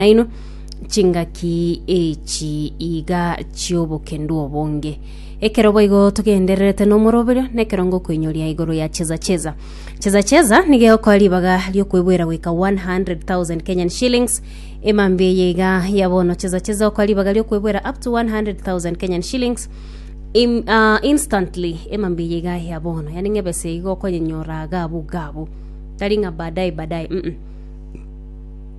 naino chingaki echi iga chi'obokendu obonge. Ekero boigo togendererete nomoroberio, nekero ngokoinyoria igoro ya Cheza Cheza. Cheza Cheza nigo egokoa ribaga ri'okweboera goika 100,000 Kenyan shillings. Emambia eye iga ya bono Cheza Cheza okoa ribaga ri'okweboera up to 100,000 Kenyan shillings im, ah, instantly emambia eye iga ya bono yani ng'a ebesa eye iga okonyenyora gabu gabu tari ng'a baadaye baadaye mm, -mm.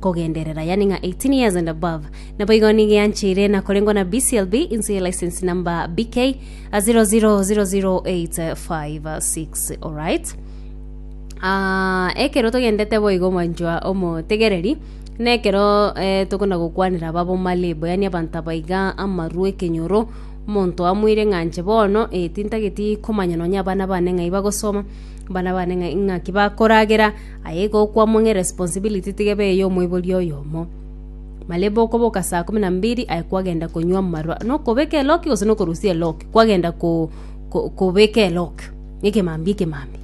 kogenderera, yaani ng'a 18 years and above. Naboigo nigo eancheire na korengwa na BCLB inse ye license number BK 0000856. Alright. Ah, ekero togendete boigo mwanchwa omotegereri na ekero eh, tokona gokwanera babo malebo yaani abanto abaiga amaru ekenyoro omonto amoire ng'anche bono eh, tintageti komanya nonya abana bane ng'ai bagosoma abana bane ng'a- ng'aki bakoragera Aye igo okwamwa ng'a eresponsibility tigebe eye y'omoibori oyomo. Malebe okoboka saa kumi na mbiri aye kwagenda konywa amarwa nokobeka eloki gose nokorusia eloki kwagenda ko ko kobeka eloki ekemambia ekemambia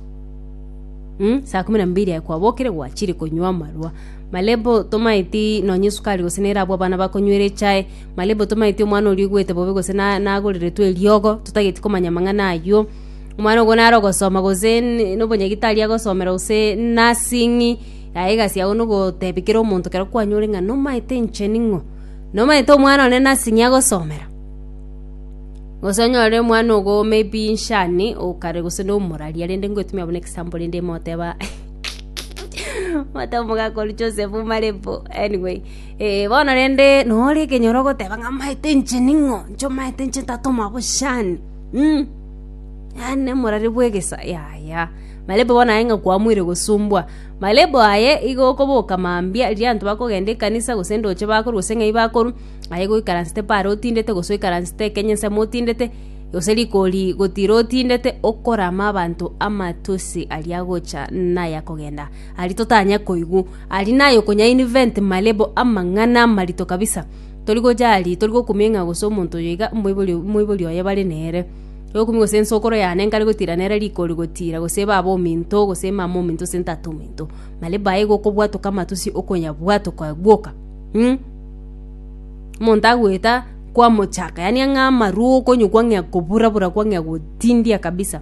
mh saa kumi na mbiri aye kwabokire gwachire konywa amarwa. Malebe otomaeti nonye esukari gose nere abwo abana bakonywera echae, malebe otomaeti omwana oria oigwete bobe gose na nagorererwe eriogo totageti komanya amang'ana aywo. Omwana ogo nare ogosoma gose n- nobonyagitari agosomera gose nursing, aye egasi yago nogotebia kera omonto ekero kwanyore ng'a nomaete inche ning'o. Nomaete omwana one nursing agosomera? Gose onyore omwana ogo maybe inshani okare gose nomorari rende ngoetumia buna example rende imoteba imoteba omogaka oria Joseph Omarepo anyway eh bono rende nore ekenyoro ogoteba ng'a amaete inche ning'o, inche omaete inche ntatoma boshani. Yaani nemorari bw'egesa yaya. Marebo bono aye ng'a kwamoire gosumbwa. Marebo aye igo okoboka mambia riria abanto bakogenda ekanisa gose ndoche bakorwa gose ng'ai bakorwa, aye goikaransete paaro otindete gose oikaransete Kenya nsemo otindete, gose rikori gotira otindete okorama abanto amatusi aria agocha naya kogenda. Aria totanya koigwa. Aria naye okonya invent marebo amang'ana amarito kabisa. Tori gocha aria, tori gokumia ng'a gose omonto oyo iga omoibori omoibori oye bare nere, tori gokumia gose ensokoro yane nkare gotira nere rikori gotira, gose baba ominto, gose mama ominto, gose ntata ominto. Nari bae igo okobwatoka amatusi okonyabwatoka bwoka mm. Omonto agoeta kwamochaka yaani ang'e amarwa okonyokwa ng'a kobura bura kwa ng'a gotindia kabisa.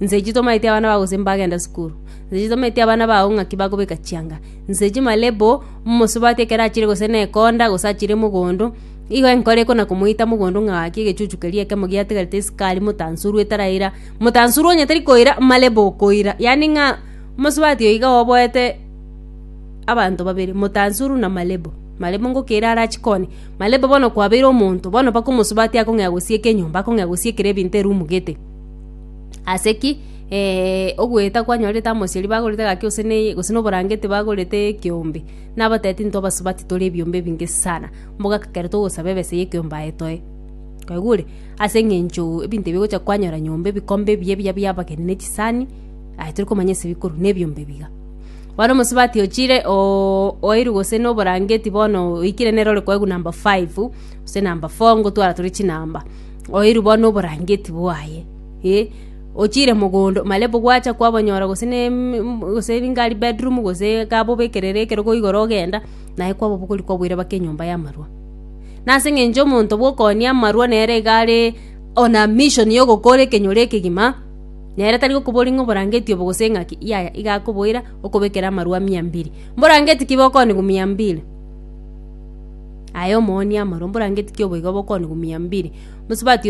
Nseche tomaeti abana bago gose mbagenda sukuru, nseche tomaeti abana bago ng'aki bakobeka chianga, nseche malebo. Momosubati ekero achire gose nekonda, gose achire mogondo, igo enkoro ekona komoita mogondo ng'a gaki egechuchu keria ekemo giatigarete esikari motansuru etaraira, motansuru onye tari koira marebo okoira, yaani ng'a mosubati oyo iga oboete abanto babere, motansuru na marebo, marebo ngokeira are achi koni, marebo bono kwabeire omonto, bono mpaka omosubati akong'ea gosieka enyomba, akong'ea gosiekera ebinto erumu gete. Ase ki ogoeta kwanyorete amoseri bagorete egaki gose na eye gose na oborangeti bagorete ekeombe? Nabatebia tinto abasubati tore ebiombe ebinge sana, mbogaka ekero togosaba ebesa ya ekeombe aye toe. Kwaigure? Ase eng'encho ebinto ebi ogocha kwanyora nyomba ebikombe ebiya ebiya bia abageni na echisani, aye tori komanya ase bikorwa, na ebiombe ebiga. Bono omosubati ochire oooo oeirwe gose na oborangeti bono oikire nere ore koegwa number five gose number four ngotwara tore chinamba. oirwe bono noborangeti bwaye, ee. Ochiire mogondo marebo gwacha kwabonyora gose ne gose niga aria bedroom gose iga bobekerere ekerogo igoro ogenda, naye kwabo bokori kwaboira baka enyomba y'amarwa. Nase eng'encho omonto bw'okooni amarwa nere iga are on a mission yogokora ekenyoro ekegima, nere tari gokoboria ng'a oborangeti obo gose ng'aki, yaya iga akoboira okobekera amarwa mia mbiri. Mborangeti ki bokoonigwa mia mbiri? Aye omoonia, mare omborangetie oboigo bokoni gumia mbiri, mosubati oye chinguru.